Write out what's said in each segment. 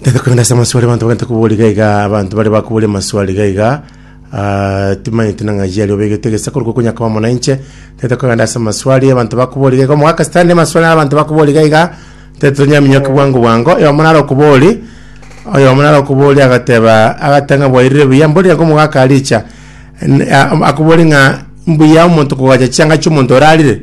Tete korenda ase amaswali abanto bagenta kobua riga iga abanto bare bakobori amaswali iga iga ah, timanyete nang'a yari obegete gesa korwa kokonya kwa omonainche tete korenda ase amaswali abanto bakobori iga iga omogaka sitani amaswali abanto bakobori iga iga tete tonyaminyoke bwango bwango oyomo naro okobori oyomo naro okobori agateba agata ng'a bwairire buya mbori iga omogaka aricha N- a- akobori ng'a mbuya omonto kogacha chianga chiomonto orarire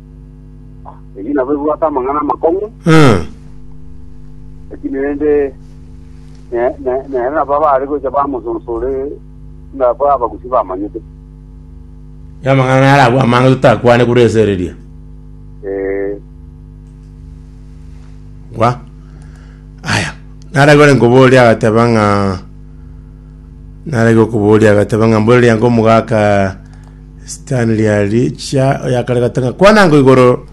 Ebi nabo ebwate amang'ana amakong'u, Mm. lakini rende ne- ne- nere nabo abare gocha bamososoore ng'ako abagusi bamanyete. Amang'ana naro abwo amange totakwane korwa ase ereria. Eh, Gwa. Aya. Naragore nkoboria agateba ng'a narage okoboria agateba ng'a mbore riango omogaka Sitani riarichia oyakarerete ng'a kwana ngo igoro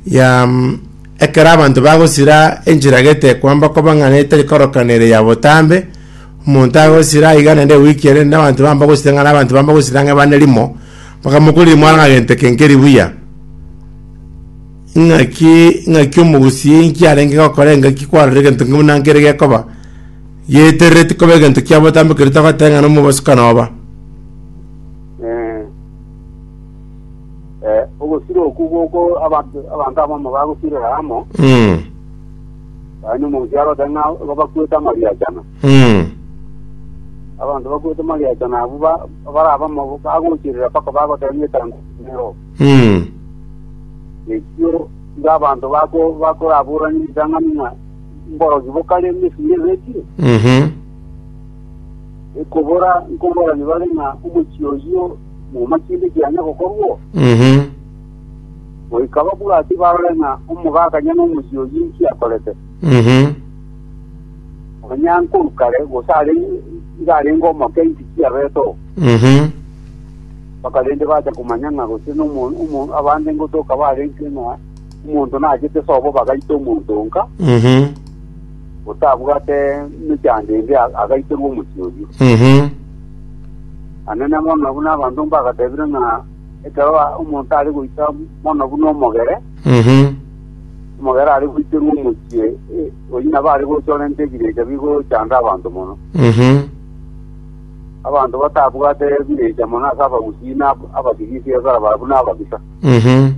ya mm, ekero abanto bagosira enchera getekwa mbakoba ng'a netari koroka nere ya botambe, omonto agosira iga naende ewiki ere naende abanto bamba gosira ng'a na abanto bamba gosira ng'a bane rimo, bakamokoriri mwana ng'a gento eke nkeri buya. Ing'aki ing'aki omogusii inki arenge gokora engaki kwarorire egento nki buna nkere gekoba, geterereti koba egento kia botambe keria togoteba ng'a na omobosio kanoba. Eh, eh, ogosira oku goko abanto abanto abamo bagosirera amo Mm. yaani omonsi arote ng'a bakwete amariachana Mm. abanto bakwete amariachana abu ba- barabamo bagochirira mpaka bagotebia etango nero Mm. ekio nga abanto bako bakoraburani ritang'ani ng'a mborogi bokare emesuri ebekire Mhm. Ekobora nkoborani bare ng'a omochie oyio mwoma kende kianya gokorwo, Mhm. goika babwati barore ng'a omogakanya nomochie oyio inki akorete. Mhm. Nonya nkoru kare gose are iga arenge omoke inki kiabete oo. Mhm. Mpaka rende bacha komanya ng'a gose nomo- omo- abande ngotoka barenge ng'a omonto nachete sobo bagaita omonto onka, Mhm. otabwate mechando ende agaitorwa omochie oyio. Mhm. Anene mono buna abanto mbagatebire ng'a ekero omonto are goita mono buna omogere, Mhm. omogere are goiterwa omochie eh, oyio nabo are gochorenta ebirecha bigochanda abanto mono. Mhm. Abanto batabwate ebirecha mono ase abagusii na ab- abatigisi ebarabara buna ababisa. Mhm.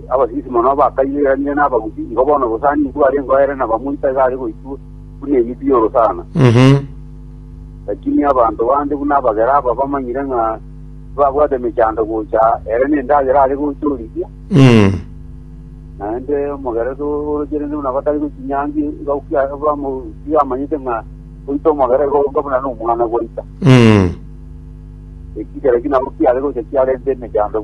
Abasisi mono abakaiyeranire n'abagusi, igo bono obosani mbwarengeo ere na bamoito iga are goitwa buna emiti y'orosana. Mhm. Lakini abanto bande buna abagera aba bamanyire ng'a tibabwate emechando gocha ere nendagera are gocha origia, Mm. naende omogeresi orocherente buna batari gochinyangi iga okia- bamu- iga amanyete ng'a goita omogera igo oka buna nomwana gwaita. Mm. Ekigera ki nabo kiare gocha kiarente emechando buna